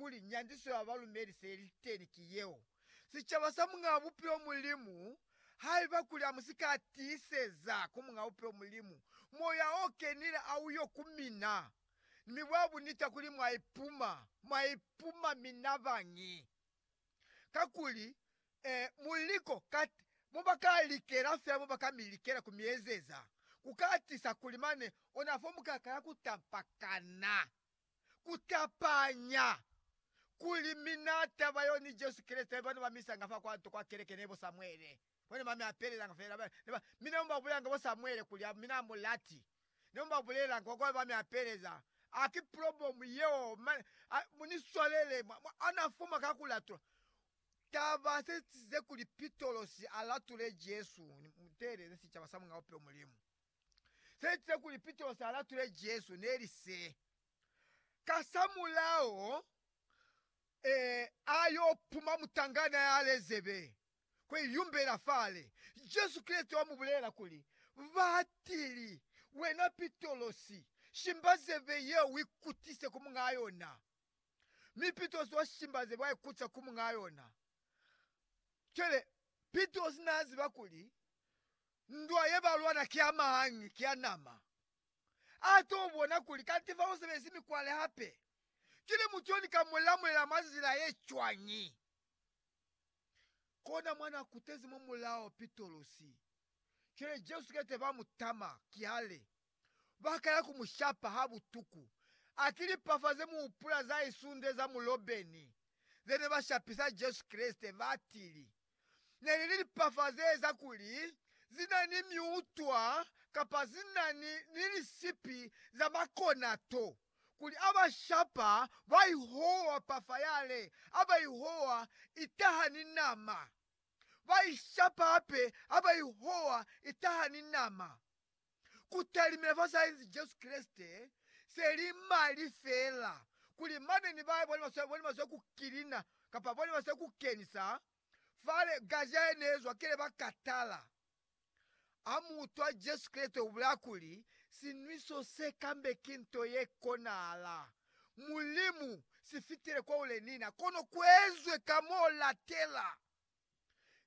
kuli nyandiso ya balumeli se ili teni ki yeo, sicaba sa Muñaa Bupilo Mulimu. Haiba kuli amusika tiiseza ku Muñaa Bupilo Mulimu Moya o Kenile a uyo ku mina, mi bwa bunita kuli mwa ipuma, mwa ipuma mina bañi? Kakuli, e, mu liko, kat, mo ba ka likela fela, mo ba ka mi likela ku mi ezeza, ku ka tisa kuli mane ona fo mu ka kala ku tampakana. ku tapanya kuli mina taba yo ni Jesu Kreste ba ne ba mi isanga fa kwa nto kwa keleke ne bo Samuele. Bo ne ba mi apelelanga fela. Ba ne ba, mi ne mu ba bulelanga bo Samuele kuli a mina mu lati. Ne mu ba bulelanga kwa kuli ba mi apeleza. A ki plobomu yeo, mane, a, mu ni swalele. Mwa, mwa, a na fuma ka ku latula. Taba se size kuli Pitolosi a latule Jesu, ni, mu teeleze sicaba sa Mulena Bupilo Mulimu. se etize kuli Pitrosi a latule Jesu ne li se, Kasamulaho a yo puma mutangana ya lezebe kwe yumbela fale. Jesu Kreste wa mu bulela kuli, Batili, wena Pitrosi, shimba zebe ye u ikutise ku muñaa yona. Mi Pitrosi wa shimba zebe wa ikutisa ku muñaa yona. Cwale, Pitrosi naa ziba kuli Ndwa ye ba lwana ki a mahangi, ki a nama. A t'o bona kuli kanti fa u sebelezi mikwale hape. Kili mutu yo ni ka mu lamulela mwa nzila ye cwañi? Kona mwa n'a kutezi mwa mulao Pitolosi. Cwale Jesu ki ete ba mu tama, ki hali, Ba kala ku mu shapa ha butuku. A ki lipafa ze mu hupula za isunde za mulobeni ze ne ba shapisa Jesu Kreste, ba tili, ne li ni lipafa ze eza kuli zi na ni miutwa kapa zi na ni, ni lisipi za makonato, kuli a ba shapa ba i howa pafa yale, a ba i howa i taha ni nama, ba i shapa hape ha ba i howa i taha ni nama. kutalimina fa sa inzi Jesu Kreste, se li mali fela kuli mane ni bae bone baswale bone baswe ku kilina kapa bone baswe ku kenisa fale gaja ye ne zwa kele ba katala. Ha mu utwa Jesu Kreste u bulaya kuli, Sinwiso se kambe ki nto ye konahala. Mulimu, si fitile kwa u le nina, kono ku ezwe ka m'o latela.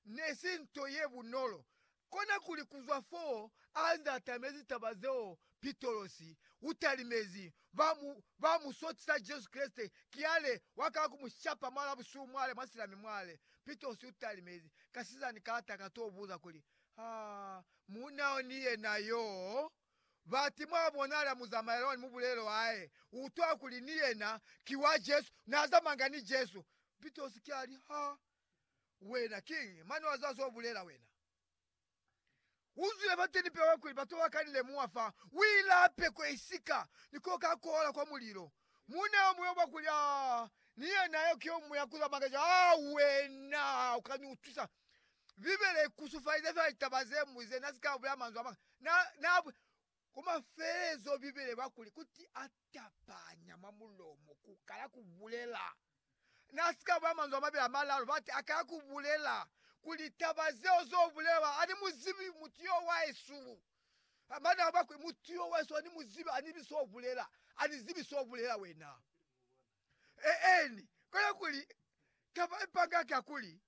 ne si nto ye bunolo. Konakuli ku zwa foo a nze a tamezi taba zeo, Pitolos u talimezi ba mu, ba mu sotisa Jesu Kreste, kiale wa kala ku mu shapa mwal'a busihu mwale, mwa silami mwale. Pitolos u talimezi, kasizani kalata ka t'o buza kuli, Ha mu na yo ni yena y'o? Bati mwa bonala muzamaela wani mu bulelo hae, u utwa kuli ni yena ki wa Jesu, na zamanga ni Jesu. Pitolos ki a li, Ha Wena kiñi? Mane wa zwa zo bulela wena. U zwile fateni pewa kuli batu ba ka ni lemuha fa u ilape ko i si ka ni ko ka kola kwa mulilo. Muuna yo muñwi wa kuli, Aa, ni yena yo ki yo muñwi ya ku zwa Makeso. Aa, wena u ka ni utwisa. Bibele i kusufalize fela litaba ze mwi ze. Na si ka bulela manzwi a mañata. Na, na, Ku mafelelezo, Bibele ba kuli, Kuti a tapanya mwa mulomo ku kala ku bulela. Na si ka ba manzwi a mabeli a malalu, bati, a kala ku bulela ku litaba zeo zo bulelwa. Ani mu zibi mutu yo wa esu. Mane a ba kuli, Mutu yo wa esu ani mu zibi, ani zibi so bulela. Ani zibi so bulela wena. Eeni, kono kuli taba ipanga ka kuli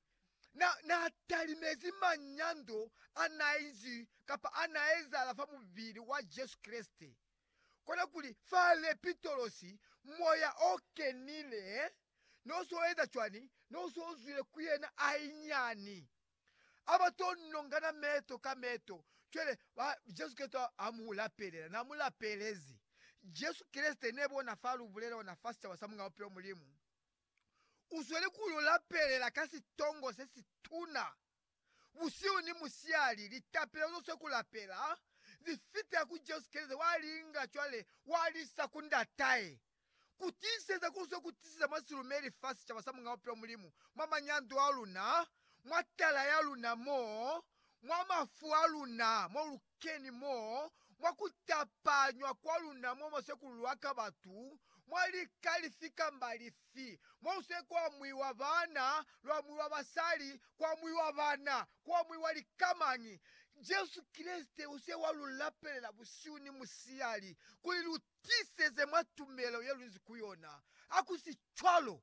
na na talimezi manyando a na inzi kapa a na ezahala fa mubili wa Jesu Kreste. Kono kuli fa Lepitolosi Moya o Kenile no so eza cwani? No so zwile ku yena hainyani. Ha ba to nongana meto ka meto, cwale ba, Jesu Kreste ha mu lapelela, na mu lapelezi. Jesu Kreste ne bona fa lubulela ona fa sicaba sa Muñ'a Bupilo, Mulimu u sweli ku lu lapelela ka sitongo se si tuna. Busihu ni musihali, litapelo zo swe ku lapela, li fitela ku Jesu Kreste, wa li inga cwale wa li isa ku Ndat'ahe. ku tiiseza ku zwa ku tisiza mwa silumeli fa sicaba sa Muñ'a Bupilo Mulimu, mwa manyando a luna, mwa tala ya luna mo, mwa mafu a luna, mo lu keni mo, mwa ku tapanywa kwa luna mwa masekululu a ka batu, mwa lika lifi kamba lifi, mo lu se ku amuiwa baana, lu amuiwa basali, ku amuiwa bana, ku amuiwa lika mañi. Jesu Kreste u se wa lu lapelela busihu ni musihali kuli lu Tiseze mwa tumelo ye lunzi ku yona. Hakusicwalo,